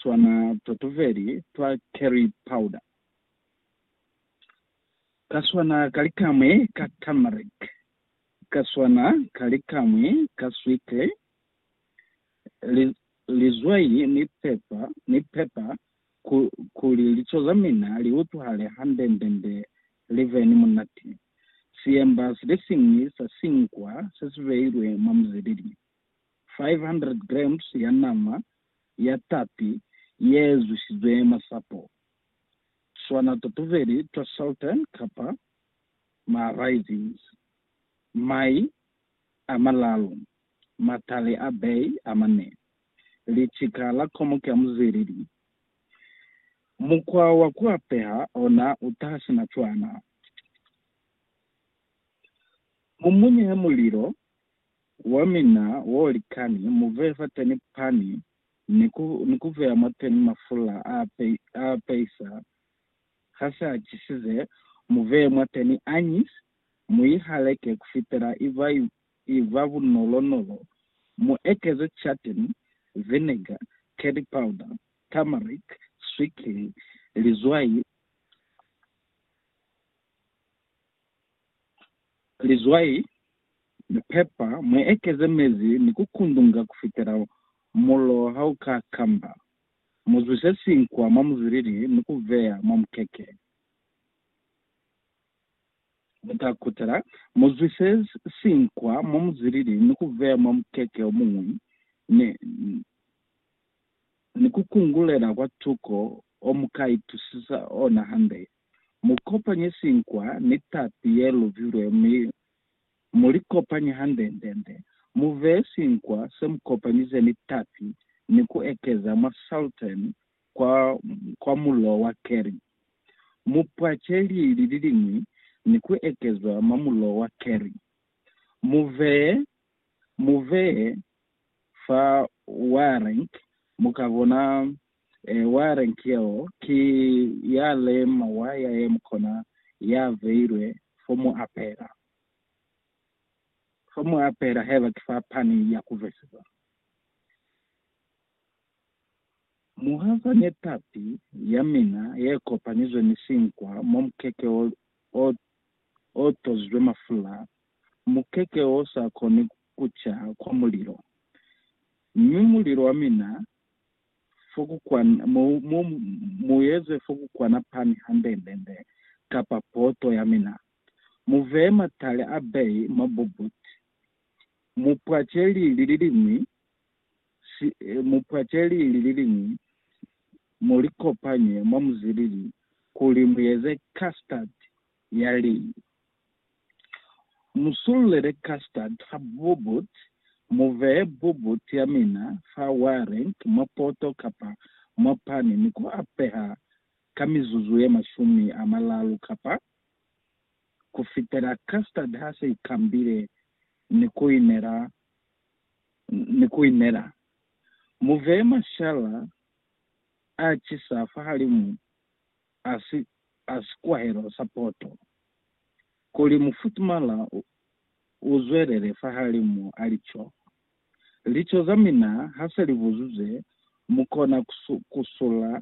swana totuveli twa curry powder, ka swana ka likamwi ka turmeric, ka swana ka likamwi ka sweetly, li, lizwai ni pepa, ni pepper, ku, kuli lico za mina li utwahale handendende li be ni munati. Siemba silisiñwi sa sinkwa se si beilwe mwa muzilili, 500 grams ya nama ya tapi ye zwishizwe masapo, swana totuveli twa Sultan kapa ma raisins, mai a malalu, matali a bay a mane, lichika la komo ka muzilili. Mukwa wa ku apeha ona u taha sina cwana. Mu munye mulilo. wa mina wo likani, mu veye fateni pani ni ku, ni ku veya mwateni mafula a, a peisa, ha se a chisize, mu veye mwateni anise, mu i haleke kufitela i ba, i ba bunolo-nolo, mu ekeze chatin, vinegar, curry powder, turmeric, swikiri, lizwai, lizwai, ni pepa, mu ekeze mezi ni ku kundunga kufitela mulo ha u ka kamba. Mu zwise sinkwa mwa muzilili ni ku veya mwa mukeke. Mu ta kutela, mu zwise sinkwa mwa muzilili ni ku veya mwa mukeke o muñwi, ni, ni ku kungulela kwa tuko o mu ka itusisa ona hande. Mu kopanye sinkwa ni tapi ye lubilwe mi mu li kopanye hande-nde-nde. Mu veye sinkwa se mu kopanyize ni tapi ni ku ekeza mwa saltern kwa, kwa mulo wa keri. Mu pwace lili li liñwi ni ku ekezwa mwa mulo wa keri. Mu veye, mu veye fa wiring, mu ka bona Warren Kiel ki ya le mowa ya ye mukona ya beilwe fo mu apela. Fo mu apela haiba ki fa pani ya ku besisa. Mu hazanye tapi ya mina ye kopanyizwe ni sinkwa mwa mukeke o, o, o tozizwe mafula, mukeke o sa koni ku ca kwa mulilo. Mi mulilo wa mina fokukwana, mu, mu, mu eze fokukwana pani handendende, kapa poto ya mina. Mu veye matale a beyi mwa bubut. Mu pwace lili liliñwi, si, mu pwace lili liliñwi, mu li kopanye mwa muzilili kuli mu eze custard ya lii. Mu sululele custard ha bubut, mu vee bubut ya mina fa warenq mwa poto kapa mwa pani ni ku a peha ka mizuzu ye mashumi a malalu kapa ku fitela custard ha se i kambile ni ku i nela ni ku i nela. Mu vee mashala a cisa fahalimu a si a sikwahelo sa poto, kuli mufutumala u, u zwelele fahalimu a lico. Lico za mina ha se li buzuzwe, mu kona ku, ku sula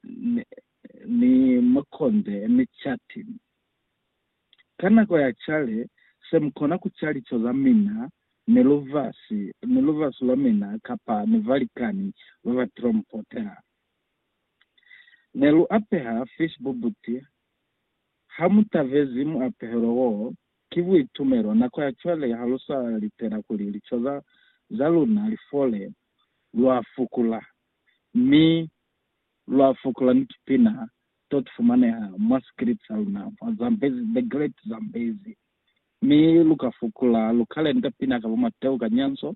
ni, ni makonde ni cati. Ka nako ya cale, se mu kona ku ca lico za mina, ni lubasi, ni lubasi lwa mina, kapa ni balikani ba ba trompotela. Ne lu apeha fish bubuti. Ha mu tabezi muapehelo woo, ki buitumelo. Nako ya cwale ha lu sa litela kuli lico za, za luna li fole, lwa fukula. Mi lwa fukula ni tupina to tu fumaneha mwa sikilipi sa luna, mwa Zambezi, The Great Zambezi. Mi lu ka fukula, lu ka lenta pina ka bo Mateo Kanyanso,